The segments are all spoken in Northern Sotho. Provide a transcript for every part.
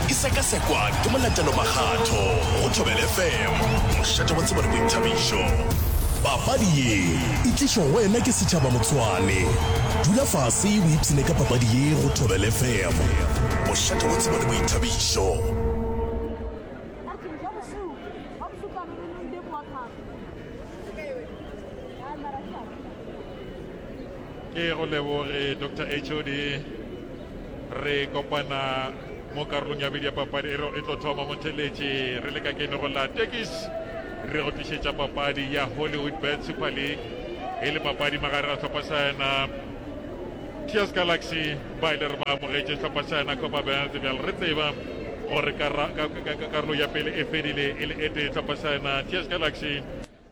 e sekasekwa ke molatelo makgatho go thobele fm mošate wa tsebo le boithabišo papadi ye e tlišo go wena ke setšhaba motshwane dula fase o ipshine ka papadi ye go thobele fm mošate wa tsebo le boithabišo ke go leboge dr hod Re kopana mo karolong ya bedi ya papadi e re e tlo thoma motheletše re le ka kene go la tekis re go tlišetša papadi ya hollywood bet super league e le papadi magare ga tlhopha sa yena tears galaxy ba ile re ba amogetše tlhopha sa yena copa belt bjale re tseba gore karolo ya pele e fedile e le e tee tlhopha sa yena tears galaxy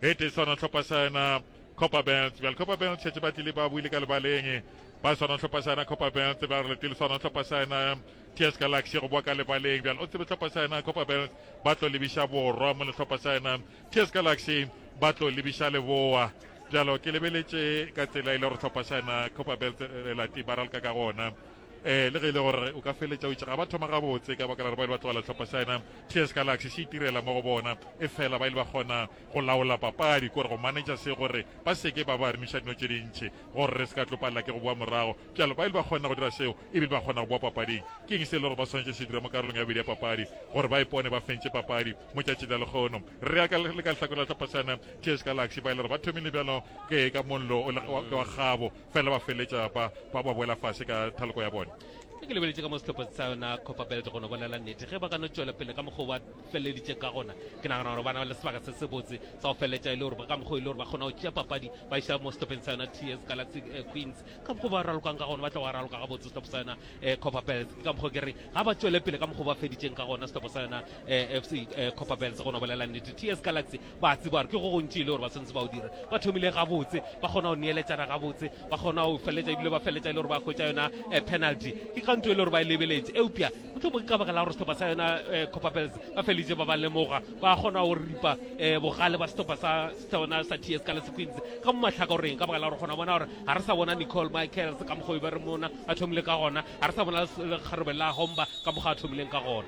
e tee swana tlhopha sa yena copper belt bjale copper belt šetse ba tlile ba buile ka lebaleng ba swana tlhopha sa yena copper belt ba re letile swana tlhopha sa yena ts galaxy go boa ka lebaleng bjale o tsebe tlhopha sa yena copper belt ba tlo lebiša borwa mo letlhopha sa yena ts galaxy ba tlo lebiša leboa bjalo ke lebeletše ka tsela e le gore tlhopha sa yena copper belt eh, lati ba ralka ka gona eh le ge e le gore o ka feletša o itse ga ba thoma gabotse ka baka la gore ba ile ba tlogela tlhopha sa yena ts galaxy se itirela mo go bona e fela ba ile ba kgona Go laola papadi kore go manetša se gore ba se ke ba ba remiša dino tše dintši gore re se ka tlo palela ke go bowa morago. Bjalo ba ile ba kgona go dira seo e bile ba kgona go bowa papading. Ke eng se e le gore ba swanetše se dira mo karolong ya bobedi ya papadi gore ba ipone ba fentše papadi mo tšatšing la lekgono? Re ya ka le ka lehlakore la Tlhopasana, TS Galaxy ba e le gore ba thomile bjalo ke ka mollo o le wa kgabo fela ba feletša ba ba ba boela fase ka thaloko ya bone. Ge ke lebeletše ka mo sehlopha sa yona Copperbelt go no bolela nnete ge ba ka no tšwela pele ka mokgwa wa feleditše ka gona ke nagana gore bana ba le sebaka se sebotse sa go feleletša e le gore ba ka mokgwa e le gore ba kgona go tšea papadi ba iša mo setopeng sa yona ts galaxy eh, queens ka mokgwa ba ralokang ka gona ba tla go raloka ga botse setopo sa yona eh, copper bells ke ka mokgwa ke re ga ba tšwele pele ka mokgwa ba feditšeng ka gona setopo sa yona eh, fc copper bells go no bolela nnete ts galaxy Ba tseba gore ke go gontši e le gore ba tshwanetse ba o dira. Ba thomile gabotse, ba kgona go neeletšana gabotse, ba kgona go feletša ebile ba feletša e le gore ba hwetša yona eh, penalty. Ke kganto e le gore ba e lebeletše. Eupša motlhomo ke ka baka la gore sehlopha sa yona eh, Copper Bells ba feleditše ba ba lemoga, ba kgona go ripa eh, bogale ba sehlopha sa sona sa TS ka lesequeens ka mo mahlakoreng ka baka la gore kgona bona gore ga re sa bona Nicole Michaels ka mokgwa o be re mona a thomile ka gona, ga re sa bona lekgarebe la Homba ka mokgwa a thomileng ka gona.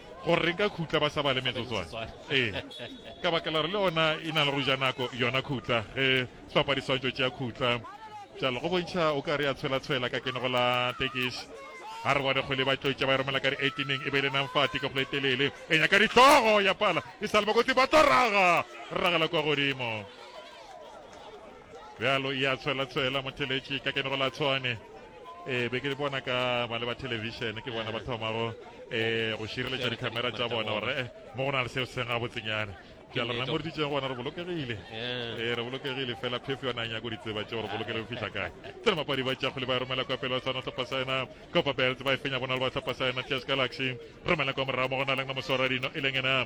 Gore re nka khutla ba sa bale metsotswana. Ee. Ka bakela re le ona e na le go ja nako yona khutla ge hlopha di swantšo tšea khutla. Jalo go bontšha o ka re ya tshwela tshwela ka kene go la tekiš. Ha re bone kgole ba tlotša ba e romela ka di 18 e be le nang fati ka kgole telele e nyaka dihlogo ya pala e sa le ba kotsi ba tlo raga ragela kwa godimo. bjalo ya tshwela tshwela motheletši ka kene go la tshwane e be ke bona ka ba le ba television ke bona ba thomago um go šireletša dikhamera tša bona gore eh, mo go na le seo se ga botsenyana bjalo rena mo re ditseng gona re bolokegile ee re bolokegile fela phefo yona nyako ditseba tšeo re bolokele go fitlha kae tsena mapadi ba tšakgole ba romela kwa pele ba tshwana tlhopa saena copa belt ba e fenya bona le ba tlhopa saena ts galaxy romela kwa morago mo go na leng na moswaradino e leng ena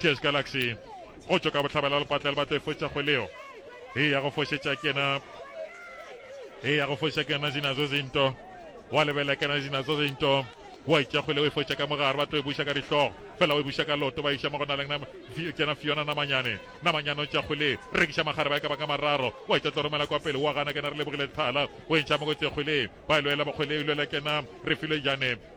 Cheers Galaxy go tšwa ka bohlabela lepatla le batla e foša kgweleo e ya go fošetša kena e ya go foša kena zinazo zinto wa lebelela kena zinazo zinto wa itša kgwele o e foša ka mogare ba tlo e buša ka dihlogo fela o e buša ka loto ba iša mo go na leng kena fiona namanyane namanyane o tša kgwele rekiša magare ba e ka ba ka mararo wa itša tlo romela kwa pele wa gana kena re lebogile thala o e ntšha mo go tse kgwele ba e lwela bokgwele e lwela kena re file jane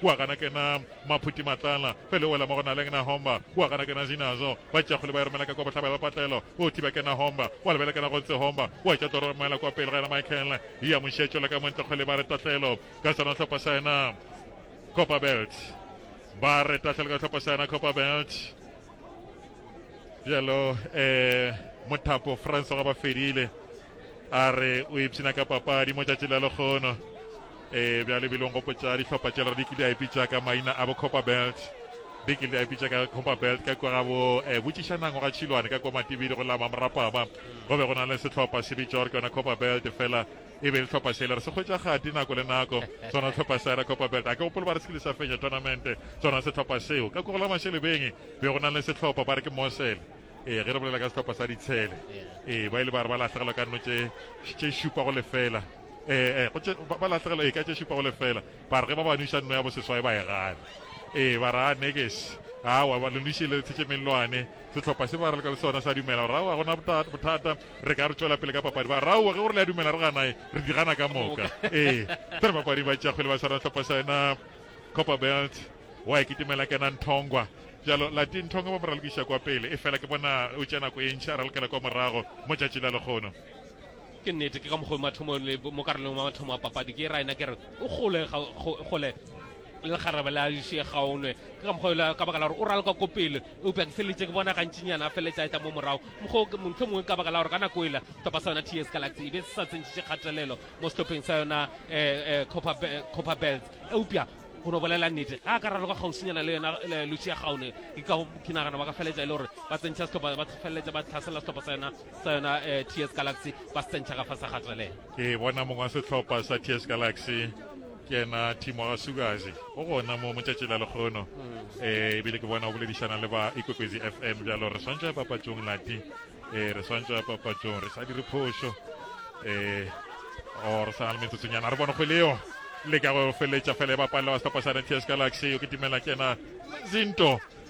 kua gana kena maphuti matlala fele wela mo go na leng na homba kua gana kena zinazo ba tša kgole ba romela ka kwa bohlaba ba patlelo o thiba kena homba wa lebela kena go ntse homba wa tša toro romela kwa pele ga yena Michael ya mošia tšola ka montle kgole ba re tatlelo ka sona tlhopa sa yena Copper Belt ba re tatlelo ka tlhopa sa yena Copper Belt bjalo eh mothapo France ga ba fedile a re o ipshina ka papadi mo tšatši la lekgono Ee, bjale bilong gopotša dihlopha tše re di kile a ipitša ka maina a bo Copper Belt. Di kile a ipitša ka Copper Belt ka kwa ga bo eh, botšišanang go ga Tšhilwane ka kwa Matibidi go la Mamorapama. Go be go na le sehlopha se bitša gore ke yona Copper Belt fela e be dihlopha sele re se hwetša gati nako le nako sona sehlopha sa yona Copper Belt. A ke gopolo ba re se kile sa fenya tournamente sona sehlopha seo. Ka kwa go la Mashelebeng be go na le sehlopha ba re ke Mosele. Ee, ge re bolela ka sehlopha sa ditshele. Ee, ba ile ba re ba lahlegelwa ka nno tše tše šupa go lefela. ee ee go tše- ba ba lahlegela ee ka tše šupa go lefela ba re ge ba ba nwiša nno ya boseswai ba e gana ee ba ra nekes awa ba le nwiše le tshetše mellwane sehlopha se ba re le ka le sona sa dumela gore awa gona bota- bothata re ka re tšwela pele ka papadi ba rawa ge gore le a dumela re ganae re di gana ka moka ee tse bapadi ba tšakgwele ba swana sehlopha sa yena copper belt wa e kitimela kena nthongwa jalo lati nthongwa ba mo ralokiša kwa pele e fela ke bona o tša nako e ntšha a ralokela kwa morago mo tšatši la lekgono Ke nnete, ke ka mokgwa mathomong le mo karolong ya mathomo a papadi ke ra ena ke re o gole ga gole le lekgarebe la še gaonwe ke ka mokgwa yola ka baka la gore o raloka ko pele eupša ke feletse ke bona gantšinyana a feletse a eta mo morago mokgwa montho mongwe ka baka la gore ka nako ela topa sa yona ts galaxy e be se sa tsentšitše kgatelelo mo setlopheng sa yona um copper belt eupša go no bolela nnete ga a ka raloka kgauswinyana le yona lucia gaone ke ka ke nagana ba ka feletsa e le gore ba tsentšha setlhopa ba feleletsa ba tlhasela setlhopa sa yona sa yona eh, ts galaxy ba se tsentšha ka fa sa gatelela ke bona mongwe wa setlhopha sa ts galaxy ke ena timo ga sukazi o gona mo motšatši la lekgono um ebile ke bona o boledišana le ba ikwekwezi f m bjalo re swantšwa papatšong lati um re swantšwa papatšong re sa dire phošo um o re sana le metsotsonyana re bone go leo le ka go feletša fela e bapalla wa setlhopha sa nts galaxy o ke timela ke ena zinto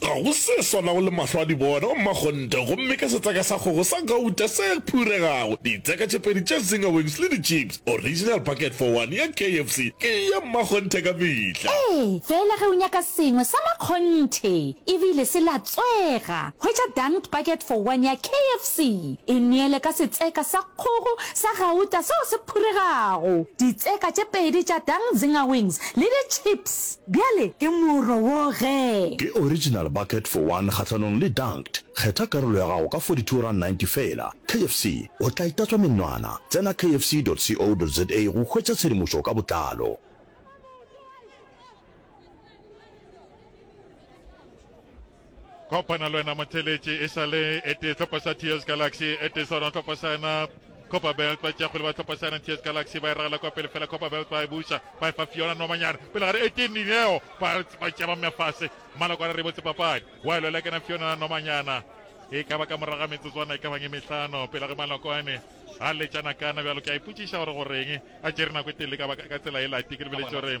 Ga go se swanago le mahlo a dibona, gomme a kgonte, gomme ke setseka sa kgogo sa gauta se phuregago, ditseka tše pedi tša zinger wings le di-chips, original bucket for one ya KFC, ke ya mmakgonthe ka mehla. Ee, feela ge o nyaka sengwe sa makgonthe e bile se latswega, hwetša dunked bucket for one ya KFC, e neele ka setseka sa kgogo sa gauta seo se phuregago, ditseka tše pedi tša dunked zinger wings le di-chips. Bjale ke moro wo ge. Ke original bucket for one kgahlanong le dunked. Kgetha karolo ya gago ka 42 rand 90 feela. KFC, o tla itatswa menwana. Tsena kfc.co.za go hwetša tshedimošo ka botlalo. Kopana le wena motheletši e sa le e tee tlhopha sa TS Galaxy e tee sa rona tlhopha sa yena Copa Belt ba tšea kgole ba tlhopha sa TS Galaxy ba e ragela kwa pele fela Copa Belt ba e buša ba e fa Fiona Nomanyana pele gare e tee Nineo ba tšea ba mmea fase maloko a re re botse papadi wa e lwela kena Fiona Nomanyana e ka ba ka moraga metsotswana e ka bang e mehlano pele ge malokwane a letšana kana bjalo ke a ipotšiša gore goreng a tšere nako e telele ka tsela e lati ke lebeletse gore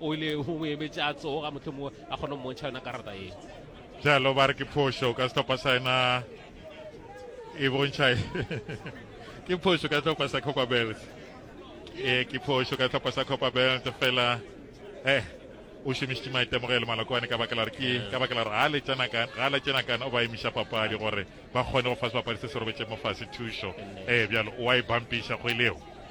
o ile go mo emetse a tsoga mohlomongwe a kgone go montšha yona karata e jalo ba re ke phošo ka setlhopha sa ena e bontšha ke phošo ka setlhopha sa copa belt e ke phošo ka setlhopha sa copa belt fela eh o šomišitše maitemogelo malokwane ka baka la re ke ka baka la re ga le tsena kana o ba emiša papadi gore ba kgone go fa sebapadi se se robetseng mo fase thušo ee bjalo o a e bampiša kgweleo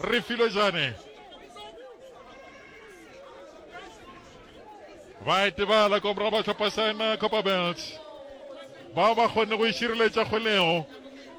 Refilwe Jane. Ba etebala kwa morago ba tlhopha Saena Copperbelt. Bao ba kgonne go išireletša kgolego.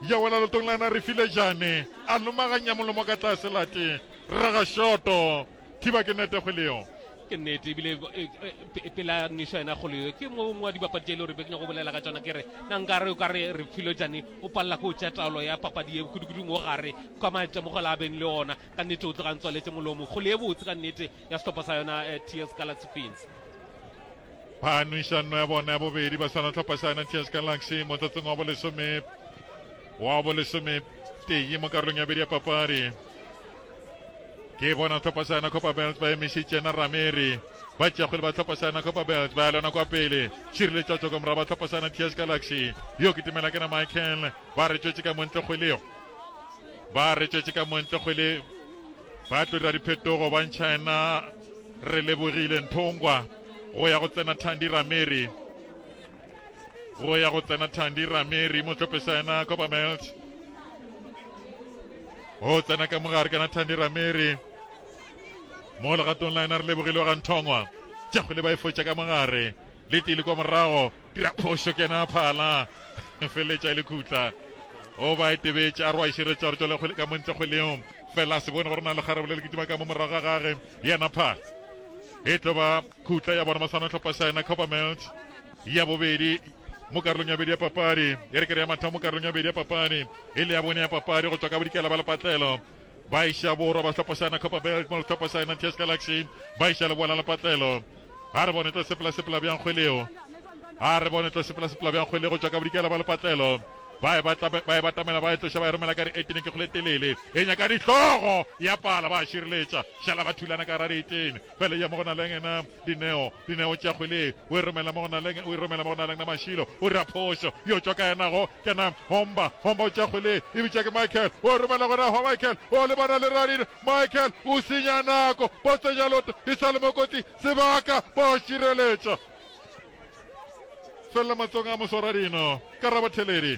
Ya wela lotong la na Refilwe Jane. A lomaganya molomo ka tlase late. Raga shoto. Thiba ke nete kgwele yo. Ke nnete ebile e, e, e, pela nišo yena kgolo yo ke mongwe wa dibapadi tše e le gore be ke nyako bolela ka tsona ke re na nkare o ka re re filo jane o palela ko o tšea taolo ya papadi ye kudukudung o gare ka maitemogelo a beng le ona ka nnete o tlogang tswaletse molomo kgolo ye botse ka nnete ya sehlopha sa yona eh, ts galaxy fins ba nwišanno ya bona ya bobedi ba swana tlhopha sa yona ts galaxy mo tsatsong wa bolesome wa bolesome tee mo karolong ya bedi ya papadi ke bona tlhopha sa yona copa belt ba emišitše na rameri ba tšeakgwele ba tlhopha sa yona copa belt ba ya lona kwa pele šireletša tsoko morago ba tlhopha sa yona ts galaxy yo ke tumela ke na michael ba re tšwetše ka montle kgwelego ba re tšwetše ka montle kgwele ba tlo dira diphetogo ba ntšha yena re lebogile nthongwa go ya go tsena thandi rameri go ya go tsena thandi rameri mo tlopesa yena coppermelt go tsena ka mogare kana thandi rameri mo legatong la yena re lebogile wa ganthongwa jago le ba e fotša ka mogare le tile kwa morago dira phošo ke yena phala feletša e le khutla o ba e tebetše a re wa išeretša gore jale ka montle kgweleo fela a se bone gore na le kgarebe le le kitima ka mo morago ga gage yena phala e tlo ba Khutla ya bona masano hlopha sa yona Coppermelt ya bobedi mo karolong ya bobedi ya papadi e re kere ya mathomo mo karolong ya bobedi ya papadi e le ya bone ya papadi go tswa ka bodikela ba lepatlelo ba iša borwa ba hlopha sa yona Copperbelt mo hlopha sa yona ts galaxy ba iša leboa la lepatlelo ga re bone tlo sepela sepela bjang kgweleo ga re bone tlo sepela sepela bjang kgwele go tswa ka bodikela ba lepatlelo ba e batamela ba e tloša ba e romela ka re etene ke kgole telele e nyaka dihlogo ya pala ba šireletša šala ba thulana ka ra dietene Bele ya mo go Naleng na Dineo, Dineo tša kgwele o e romela mo go Naleng, o e romela mo go Naleng na Mashilo o dira phošo, yo tšwa kae nago ke na Homba, Homba o tša kgwele e bitša ke Michael o e romela go na Michael o lebana le Radin, Michael o senya nako bo tsenya loto e sa le mo kotsi sebaka bo šireletša felela matsong a moso Radin, Karabo Theledi.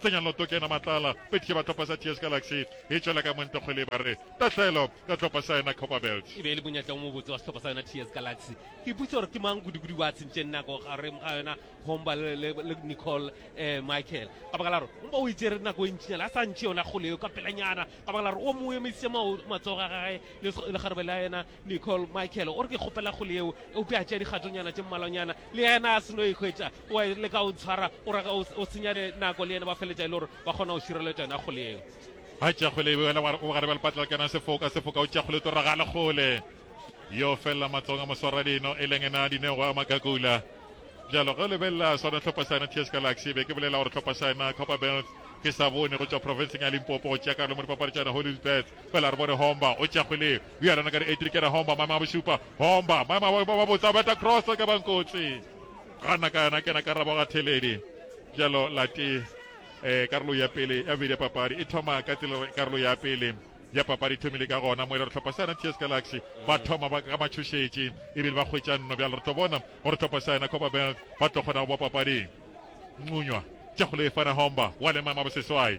Tsenya loto ke ena matlala, pedi ke ba tlhopha sa TS Galaxy, e tšwela ka Montekgole ba re tahlelo ka tlhopha sa ena Copperbelt. E be e le monyetla o mobotse wa sehlopha sa yona TS Galaxy. Ke ipotša gore ke mang kudu-kudu ba tshentšeng nako gareng ga yona Homba le, le, le Nicole eh, Michael. Ka baka la gore Homba o e tšere nako e ntšinyana a sa ntšhe yona kgole eo ka pelanyana, ka baka la gore o mo emisitše mao, matsogo a gage le, le kgarebe la yena. Nicole Michael o re ke kgopela kgole yeo eupša a tšea dikgatonyana tše mmalwanyana le yena a seno ikhwetša o le ka o tshwara o ra o senya nako le yena ba feletša e le gore ba kgona go šireletša yona kgole yeo a tšea kgole e wela o gare ba lepatla le kena sefoka sefoka o tšea kgole to ragale kgole yo felela matsong a moswara dino e leng ena dinego a makakula jalo ge o lebelela sona tlhopha sa yena ts galaxy be ke bolela gore tlhopha sa yena copper belt ke sa bone go tšwa profenseng ya limpopo go tšea karolo mo dipapadi tšana hollywood bets fela re bone homba o tšea kgwele Bjalo na ka dietrikere homba maema a bošupa homba maema a ba botsa beta cross ka bankotsi ga nna ka yona kena karabo ga theledi jalo lati eh karolo ya pele ya bedi ya papadi e thoma ka tsela karolo ya pele ya papadi thomile ka gona mo e le re tlhopha sa yona ts galaxy ba thoma ba ka matšhošetše ebile ba hwetša nno bjalo re tlo bona gore tlhopha sa yona copa bank ba tlo kgona go ba papading ncunywa tša go lefana homba wa le maema boseswai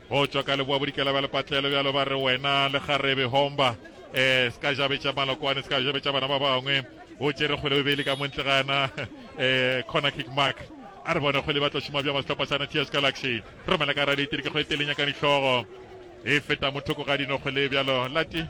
Go tšwa ka leboa bodikela bja lepatlelo bjalo ba re wena le garebe homba eh ska jabetša malokwane ska jabetša bana ba bangwe o tšere kgwele bobeli ka montle gana eh corner kick mark a re bone kgwele ba tla šoma bja masetlhopha sa natias galaxy romela ka raditiri ke go e telenya ka dihlogo e feta mo thoko ga dino kgwele bjalo lati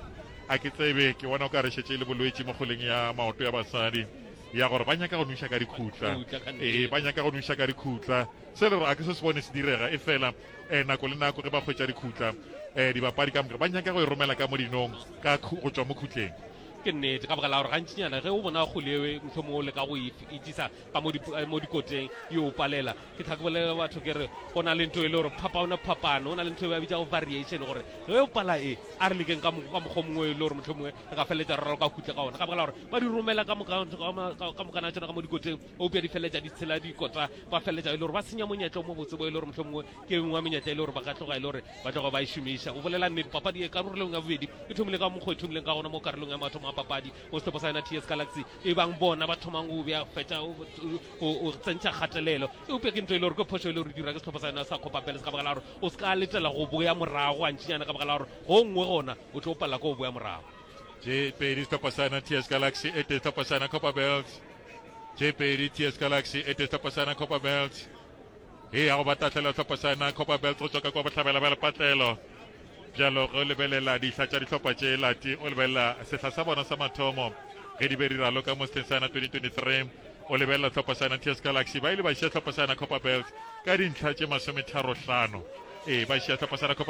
a ke tsebe ke bona o ka re šetše le bolwetši mo kgoleng ya maoto ya basadi ya gore ba nyaka go nuša ka dikhutla ee ba nyaka go nuša ka dikhutla se le gore a ke se se bone se direga e fela eh, nako le nako ge ba hwetša dikhutla eh, dibapadi ka moka ba nyaka go e romela ka modinong ka go tšwa mo khutleng ke nnete ka bogala gore gantsinyana ge o bona kgole ewe motlho mongwe o leka go e itsisa ka mo eh, dikoteng e o palela ke tlhakobolele batho ke re go na le nto e le gore phapano phapano go na le nto e ba bitsa go variation gore ge o pala e a re lekeng ka mokgwa mongwe e le gore motlho mongwe re ka feleletsa rralo ka khutle ka ona ka bogala gore ba di romela ka mokana tsona ka mo dikoteng eupša di feleletša di tshela dikota ba feleletša e le gore ba senya monyetla o mo botse bo e le gore motlho mongwe ke engwe wa menyetla e le gore ba ka tloga e le gore ba tloga ba e šomiša o bolela nnete papadi e karolong ya bobedi e thomile ka mokgwa e thomileng ka gona mo karolong ya mathomo a papadi mo setlhopo sa yona ts galaxy e bang bona ba thomang go bja fetša o tsentšha kgatelelo eupša ke ntho e le gore ke phoso e le gore dira ke setlhopo sa yona sa copa peles ka baka la gore o se ka letela go boya morago gantšinyana ka baka la gore go nngwe gona o tlo palela ko o boya morago tše pedi sehlopha sa yona ts galaxy e tee sehlopha sa yona copper belt tše pedi ts galaxy e tee sehlopha sa yona copper belt e ya go ba tahlela sehlopha sa yona copper belt go tswaka kwa bohlabela ba lepatlelo bjalo ge o lebelela dihla tša dihlopha tše lati o lebelela sehla sa bona sa mathomo ge di be di raloka mo sehleng sa yona 2023 o lebelela sehlopha sa yona ts galaxy ba ile ba šia sehlopha sa yona copper belt ka dintlha tše masometharo hlano ee ba šia sehlopha sa yona copper